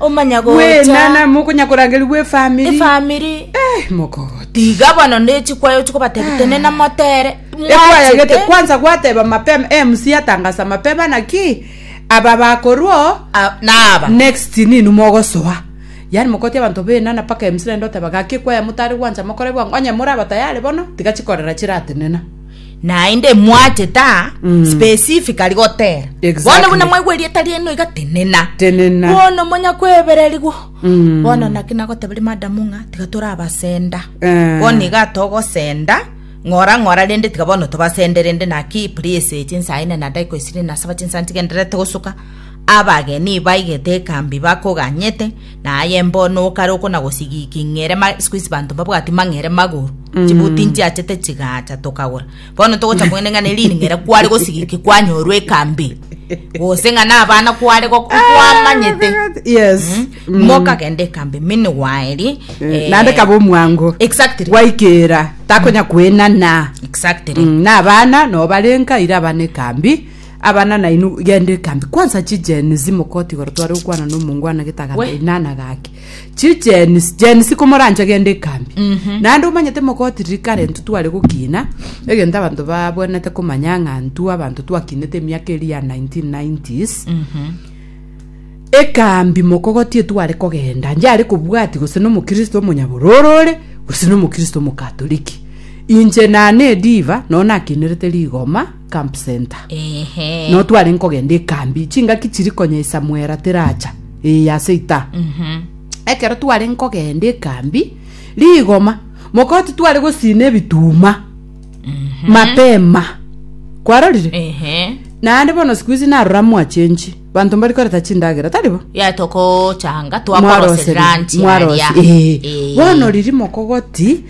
omanya gocha Bwenana mokonya korangerigwa efamiri. efamiri Eh, mokogoti. tiga bono nechikwayo chikobatebia tenena motere Ekwaya gete mwachete kwanza gwateba mapema MC atangasa mapema naki aba bakorwo a- naba next ninu mogosoa yani mokoti abanto benana paka MC naende oteba gaki ekwaya motare gwancha mokore bwango onye moraba tayari bono tiga chikorera chiratenena naende mwacheta Mm. specifically gotera Exactly. bono buna mwaigwa erieta riaino iga tenena Tenena. bono monya kwebererigwa Mm. bono naki nagoteberia madamu ng'a tiga torabasenda Eh. bono iga togosenda ng'ora ng'ora rende tiga bono tobasende rende naki please chinsaine na daika isire nasaba chinsa ntigenderete gosuka abageni baigete ekambi bakoganyete Na aye mbono okare okonagosigiki ng'ere ma... Siku hizi banto mbabwati mang'ere magoro. Chibuti nchiachete chigacha tokagora. Bono togocha kong'ende ng'a neri ng'ere kware gosigiki kwanyorwa ekambi. Gose ng'a nabana kware gok- kwamanyete. yes Mm. Mokagenda ekambi mini gwaeri. eh, naende kaba omwango Exactly. gwaikera takonya kwenana Exactly. Mm, na abana no barenka ira abana ekambi Abana nainwe genda ekambi kwansa chijeni zimokoti igoro tware gokwana na omongwana getaga We. inana gake chijeni jeni sikomorancha genda ekambi naende omanyete mokoti rikare ntu tware gokina egento abanto babwenete komanya ng'a ntu abanto twakinete emiaka eri ya 1990s ekambi mokogoti etware kogenda njare kobwati gose na omokristo omonyabororo ore gose na omokristo omokatoliki inche nane ediva nonye nakinerete rigoma camp center Ehe. no tware nkogenda ekambi chingaki chiri konya esamwera teracha ee ase ita Mhm. ekero tware nkogenda ekambi rigoma mokoti tware gosina ebituma mapema kwarorire Ehe. naende bono siku hizi narora mwachenji banto mbari koreta chindagera taribo ya tokochanga Mwaroseri- twakoroseranti mwarosi- ee. bono riri mokogoti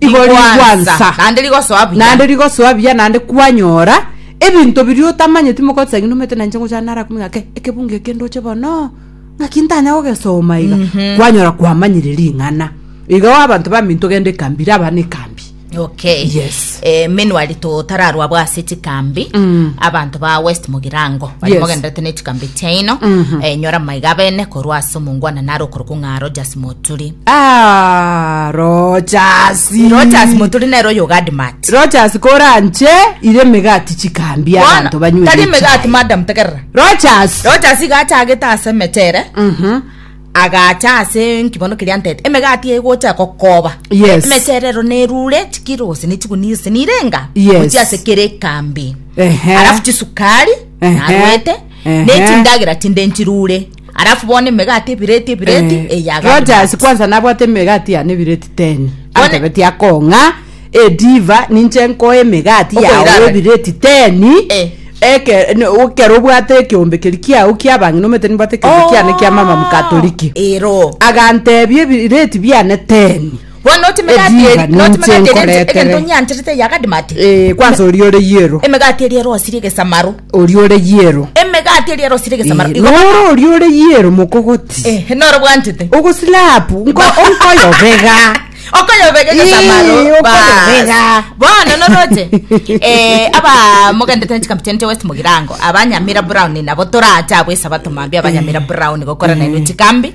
Nigo rigwansa, naende rigosoa buya. naende rigosoa buya naende kwanyora ebinto biria otamanyeti mogosa ng'a numete nainche ngochana nara kumenya ng'a ke ekebungo eke ndoche bono ng'aki ntanya gogesoma iga kwanyora kwamanyire ring'ana iga oo abanto bambi ntogende ekambi raba nekambi okay Yes. eh, menuari totararwa bwa ase chikambi Mm. abanto ba west mogirango bari Yes. mogenderete ne chikambi chiaino eh, nyora maiga bene korwa ase omongwana naro okorokwa ng'a rogers turi Ah, Rogers. Rogers moturi nere oyo Gadmat Rogers koranche ire emegati chikambi Bono, abanto banywe tari emegati echai. madam tegerera Rogers. Rogers iga achagete ase emechere Mhm. agacha ase nkibono keria ntete emegati egocha gokoba Yes. emechere ero nerure chikiro gose nechigunia gose nirenga Yes. gochia ase kere ekambi Ehe. alafu chisukari Ehe. narwete Ehe. nechindagera chinde nchirure Alafu bono emegati ebireti ebireti Eh, eya Rogers Galimanti. kwanza nabwate emegati yane ebireti teni One- antebetie akong'a ediva ninche nkoe emegati Okoira yao abere. ebireti teni Eh. Eke- ne- okero obwate ekeombe keri kiao kiabang'ina omete nimbwate ekeombe kiane kia mama mkatoliki Oh, ero agantebia ebireti biane teni Bono note emegati eri- Eriba note ninche emegati eri ente- nkoretere. egento nyanterete eyagadimate Eh, kwansa oria ore yiero emegati eri erosirie egesamaro oria ore yiero emegati eri erosirie egesamaro Eh, Igo- noro oria ore yiero mokogoti Eh, noro bwanchete ogosilapu nko onkoyobega okoyobega Ii, egesamaro okoyobega. bono noroche eh, aba mogendete nchikambi chene chia west mogirango abanyamira brown nabo torache abo esabato mambia abanyamira brown gokora nainwe chikambi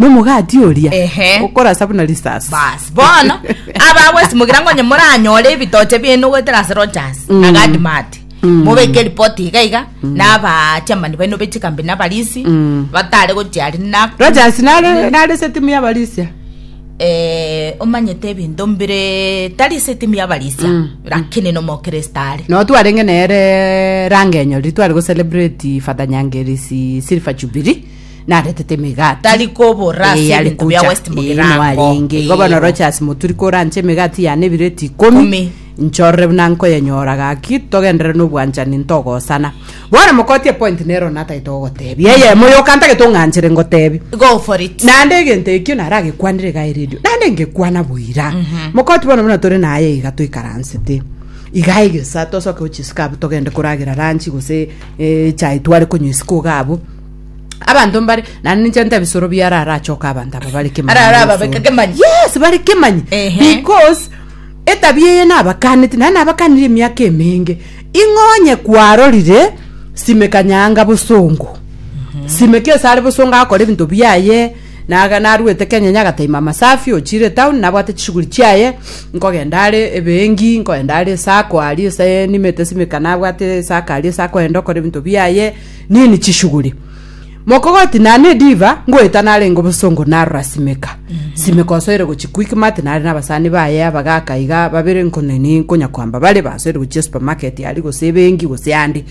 Nomogati oria Ehe. okorasa buna risasi. basi bono abagwesimokera ngonye moranyore ebitoche biaino goetera ase rogers Mm. na gadmati Mm. mobeke ripoti iga iga naba chamani baino bechikambi nabarisi Mm. batare gochiari na Rogers nare nare se timu ya Barisia. eh, omanyete ebinto mbire tari se timu yabarisia Mm. lakini nomokristo are No twarenge nere rangenyori twari go celebrate Father Nyangerisi Silver Jubilee. naretete emegati Tari kobora ase eyare ebinto bia gocha West Ee, Mugirango. mwarenge Ee, igo bono bo. rochasi moturi koranche emegati yane ebireti Ikomi. ikomi nchorore buna nkoyenyora gaki togenderere nobwanchani ntogosana bono mokoti epointi nero natagete gogotebi eyemo yoka ntagete ong'anchere ngotebi go for it naende egento ekio naragekwanire iga eredio naende ngekwana boira mokoti bono buna tore naye iga toikaransete iga egesa tosoke gochia isiko abwo togende koragera ranchi gose eh, chai tware konywa isiko iga abwo abanto mbare naende ninche nte ebisoro biaro arachoka abanto aba bare kemanyi Ara- ara na ababeka ebisoro. kemanyi. yes bare kemanyi Ehe. because etabia eye nabakaneti naye nabakanire emiaka emenge ing'onye kwarorire simeka nyaanga bosongo simeka ase are bosongo agakora ebinto biaye naga narwete kenyenya agataima amasafi ochire town nabwate chishughuli chiaye nkogenda are ebengi nkogenda are esako aria ase nimete simeka nabwate esako aria ase akoenda okora ebinto biaye Nini chishuguri. Mokogoti na ne diva ngoeta nare ngo bosongo narora simeka. Mhm. Simeka osoire go chikuiki mate nare na basani ba ye abagaka iga babere nko ne ni konya kwamba bare ba soire go chia supermarket ari go sebengi go seandi.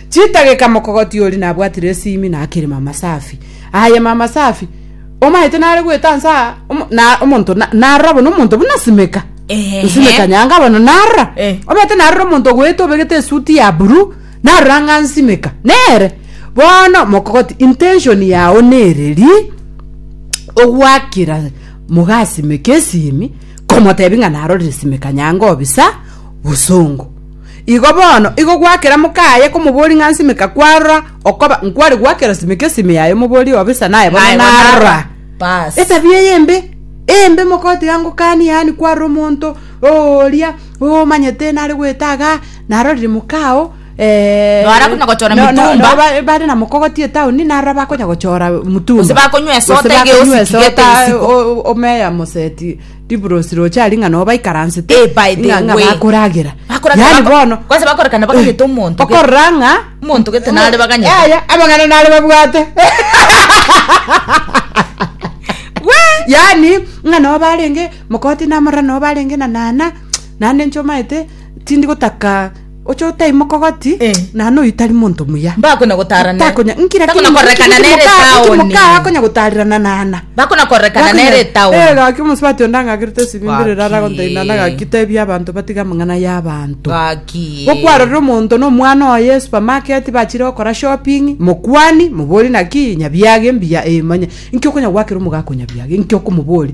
Chita geka mokogoti ori na bwatire simi na akiri mama safi. Aye mama safi. Omaete nare goeta nsa na omonto na narora bono omonto buna simeka. Ehe. Simeka nyanga bono narora. Eh. Omaete narora omonto goeta obegete suti ya buru. Narora ng'a nsimeka nere. Bono mokogoti intention yao nere ri ogwakera mogasimeka esimi komotebi ng'a narorire simeka nyango obisa bosongo igo bono igo gwakera mokaye komobori ng'a nsimeka kwarora okoba nkware gwakera simeka esimi yaye omobori obisa naye bono Naye bono narora narora. Bas. etabia eye embe embe mogoti angokani yaani kwarora omonto oria omanyete nare goetaga Naro ririmuka ao eh, Naro akonya gochora no- no- mitumba. no, ba- bare na mokogoti etaoni naro bakonya gochora mutumba Gose bakonywa esota Gose ege bakonywa yose tigete esota, isiko. o- o- omeya moseti riburosi roche ari ng'a noo baikaransete Eh, by the ng'a- ng'a way. bakoragera Bakoragera yani bako- bono kwanza bakorekana bakageta omonto ge- okorora ng'a omonto gete nare baganyete. Yaya, amang'ana nare babwate yani ng'a noo barenge mokoti namorora noo barenge na nana nande nchomaete Tindi gotaka oche otaimoka ogoti Eh. na noyo tari monto muya. Mbakona gotara ne. Takonya nkira Takona korekana nere taoni. Mukaa akonya gotarerana nana. Bakona korekana nere taoni. Eh gaki omosubati onde ang'agerete esibimbi rere ara gontaina Gaki. nagaki tebia abanto batige amang'ana ya abanto. Gaki. Gokwarorera omonto na omwana oye esupamaketi bachire gokora shopping mokwani mobori naki nyabiage mbuya eh manya inki okonya gwakera omogaaka onyabiage inki okomobori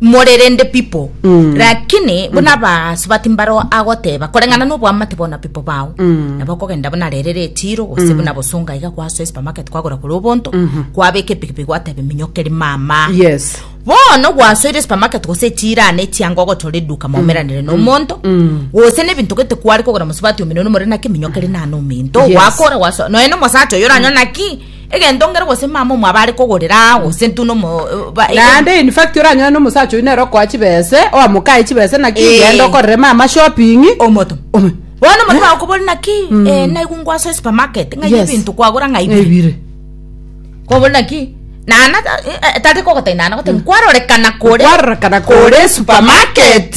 More rende pipo, rakini buna abasubati mbaro agoteba, koreng'ana noboamate bono pipo bao, nabo okogenda buna rere retiro, gose buna bosonga iga kwasoe supermarket kwagora korwa obonto, kwabeka epikipiki gwateba minyoke rimama. Yes. Bono gwasoire supermarket gose echirane echiango ogochora eduka maumeranire nomonto, gose nebinto gete kware kogora mosubati ominene omore naki minyoke rinane ominto, Yes. gwakora gwasoa, nonya na omosacha oyo oranyore naki egento ngero gose mama omo abare kogorera aa gose ntu nomo ba- egento- naende in fact oranyore na omosacha oyio nere okoa chibese oamokae chibese naki Eh. genda okorere mama shopping omoto Ome- bono omoto bakobori naki eh, naigu ngwasoe supermarket ng'ai Yes. ebinto kwagora ng'ai bire ebire kobori naki nana ta- eh, eh, tari kogotari nana gotari kwarorekana kore kwarorekana kore supermarket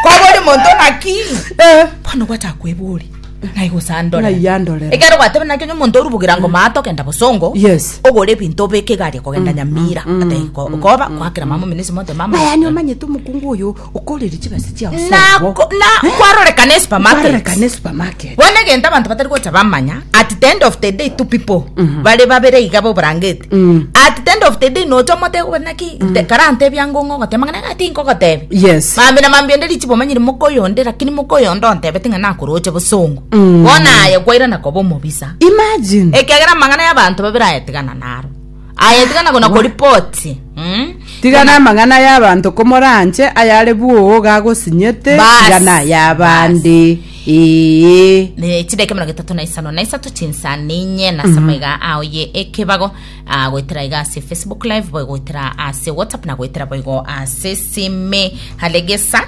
kobori monto naki Eh. bono gwachaka kwebori Ng'ai gose andorere? Ng'ai andorere? Ekero gwatebe nakio onye omonto orubugera ngo maato kenda bosongo. Yes. Ogore ebinto obeke egari kogenda mm, Nyamira. Mm, Ate mm, ko koba kwakera mama minisi monte mama. Na yani omanyete omukungu oyo okorere chibasi chia osongo. Na na eh? kwaroreka ne supermarket. Kwaroreka ne supermarket. Bone genta abantu batari gocha bamanya at the end of the day two people. Mm-hmm. Bare babere igabo branget. Mm. at the end of the day nocha omotego bati naki nte- karantebia ngo ng'o ogoteba ng'a nagati nkogotebia yes mambi na mambi onde richi bomanyire moka oyo onde lakini moka oyo onde ontebete ng'a nakoroche bosongo Mm. bona aye kwaira nakoba omobisa imagine ekegera amang'ana y'abanto babere ayetigana naro ayetigana gona koripoti mm? tigana amang'ana y'abanto komoranche ayare bwogo gagosinyete Bas. tigana ay'abande Ee. Ne chidaika emerongo etato na isano na isato chinsa ninye nasa maiga ao ye ekebago ah, goetera iga ase facebook live boigo goetera ase whatsapp na goetera boigo ase sime halegesa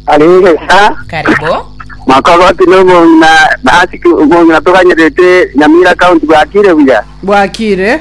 aregesa karibu makogoti nobong'ina nasiki obong'ina toganyerete nyamira county bwakire buya bwakire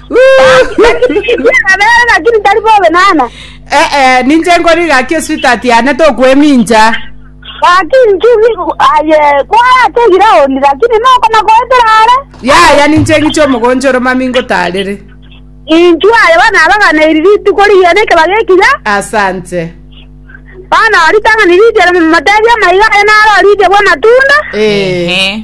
Nabere lakini tari bobe nana. Eh, eh, ninche nkori gaki esweetheart yane tokwemincha. Lakini chugi aye kwaya tegire ondi lakini noko nakoetera are. Yaya ninche ng'iche omogoncho oro mami ngotarere. Inchu aye bana abagana iri rituko riye ne keba gekiya. Asante. Bana ori tangani ridia matebi amaiga aye naro ridia bwa matunda. Eh. Ehe.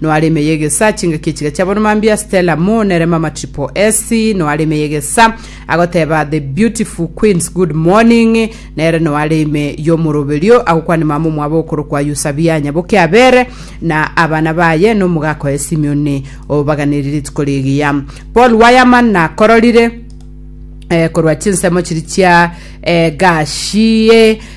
Noare ime y'egesa, chingaki echiria chia bono mambia, Stella Moore nere Mama Triple S, noare ime y'egesa, agoteba The Beautiful Queens Good Morning, nere noare ime y'omoroberio, agokwania mama omwabo okorokwa Yusabia nyaboke Abere, na abana baye, na omogaka oye Simeoni, obaganeri rituko rigiya. Paul Wireman nakororire eh, korwa chinsemo chiri chia eh, Gashie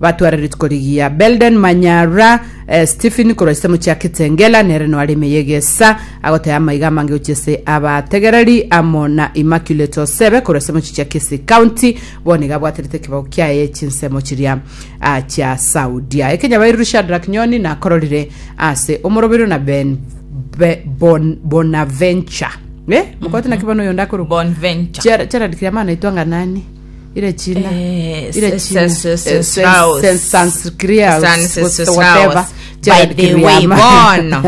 Batware rituko rigiya Belden Manyara, eh, Stephen korwa ase mochie ya Kitengela, nere noare ime y'egesa, agoteba amaiga amange gochia ase abategereri, amo na Immaculate Osebe korwa ase mochie chia Kisii County, bono iga abwaterete ekebago kiaye chinsemo chiria ah, chia Saudia. Ekenyabairu Shadrack Nyoni nakororire ase omoroberio na Ben Be- Bon- Bonaventure. Eh, mokote naki bono oyonde akorokwa? Bonventure. Gerard Kiriamana aitwa ng'a nani? irachina Eh, irachina se- se- se- Eh, se- Strauss. se- Sanskriaus, San- se- se- what- whatever. Strauss. Gerald By the way, Kiriama. bono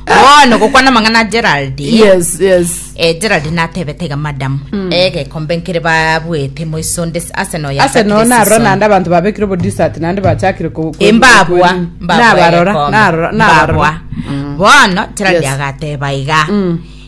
bono gokwana mang'ana gerald yes yes eh, gerald natebete iga madam egekombe nkere babwete moiso nde arsenal ya ase no narora naende abantu babekire obodisat naende bachakire ku- ku- imbabwa ku- nabarora narora- nabarora bono gerald Yes. agateba iga Mm.